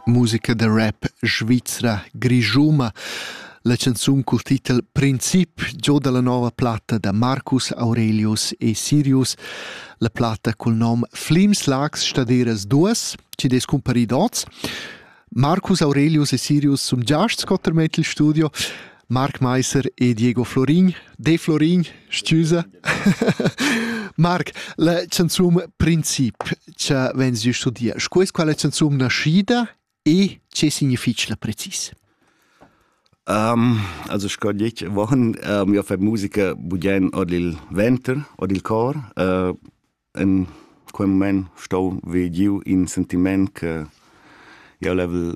Musica da rap svizra grischuna La canzun cul titel Princip gioda la nova platta da Marcus Aurelius e Sirius. La platta cul nom Flimslags staderas duas, chi'd es cumparid hoz. Marcus Aurelius e Sirius sun giasts sco termett il studio. Marc Meiser e Diego Florin. De Florin, scusa. Marc, la canzun princip che vens di studia, scu es quella canzun naschida e che significa la precis? Um, also sco dic wochen um, io fai musica budien od il venter, od il cor. Uh, in quel moment stau vegiu in sentiment che io level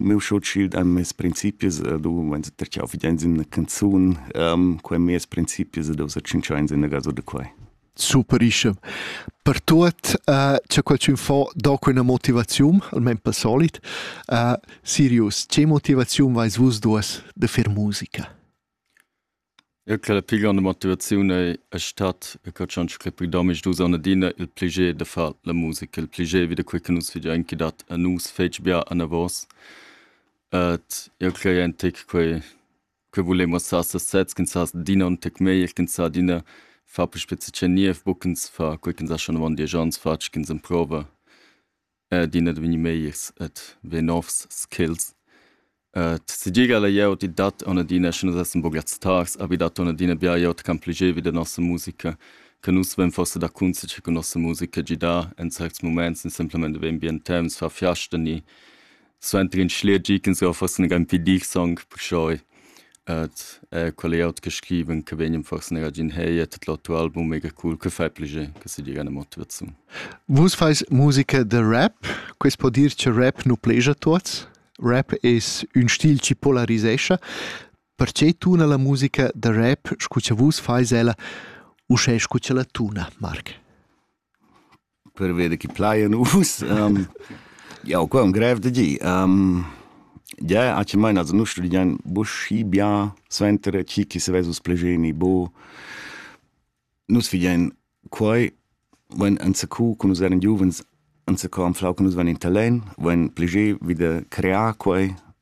Miu sutschil da mes principis ed u vains perche ho fidà in üna canzun. Quai meis principis ed ho set tschinchà ins üna gasa da quai. Superische. Per tuot cha qualchün fo do quella motivaziun, almain pel solit, Sirius, che motivaziun vais vus duos da fer musica? Eu craj la pil gronda motivaziun ei es stat e co ch'han scrit pü domisdus on adina il pliger da far la musica, il pliger vi da quei che nus vegian anche dat a nus fetg bia anavos. Ed eu craj aint che quei che vulemus far sas sezs, ch'ins sa adina ün tec meglier, ch'ins sa adina far pü spezia che niev, buc ins fa quei ch'ins ha schon avon diesch ons fatg, ch'ins emprova. adina ed vegnir megliers ed vegnir novs skills. tgigel ei jeu ed dat aunc adina, sche nus essan buca stars, havi dat aunc adina bia glieud ch'ampliegevi da nossa musica, che nus vein forsa da cunzatger cun nossa musica, gidar en certs muments, ni semplamein vein bien temps, far fiasta ni suenter in schler gi ch'ins ja forse negan pi dir song perciò et eh quel ei aut che scriven che vegnan forse negar gin hey et tot l'auto album mega cool che fai pliger che se diga eine motivazione vus fais musica de rap quest po dir che rap nu plegia tuots rap es un stil chi polarisescha perché tuna la musica de rap scu che vus fais ella u sche scu che la tuna marc per veder chi plaja nus. um, jau qua un grev da dir. Um, ja, ac maina also nu studian buschi bien suenter chi chi se vesus plegeni bo. Nus fidian quai, wenn anzacu cu nus eran giuvens, anzacu am flau che nus van in talen, wenn plege wieder crear quai,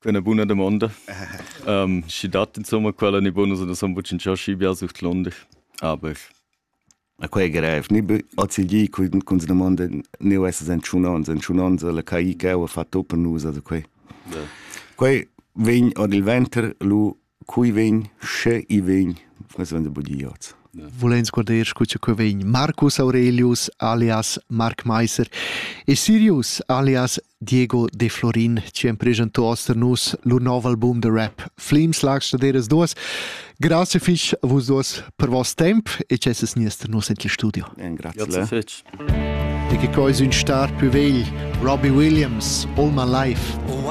Quella buna domanda. um, schi dat insomma quella ni bonus da son bucin ciò schi bia sucht Londra. Aber a quei grev ni azigli cun se domanda ni es en tschunons en tschunons la caì che ha fatto per nus da quei. Quei vegn od il venter lu Cui vegn, sche i vegn, responda Budiot. Volens guarder scu che que vegn Marcus Aurelius alias Mark Meiser e Sirius alias Diego de Florin ci han presentò oster nus lur nov album de rap Flimslags staderas duas. Grazie fich a vus duas per vos temp e ci es niester nus en il studio. Grazie fetch. E che coi sun star più vegl Robbie Williams All My Life. Oh, I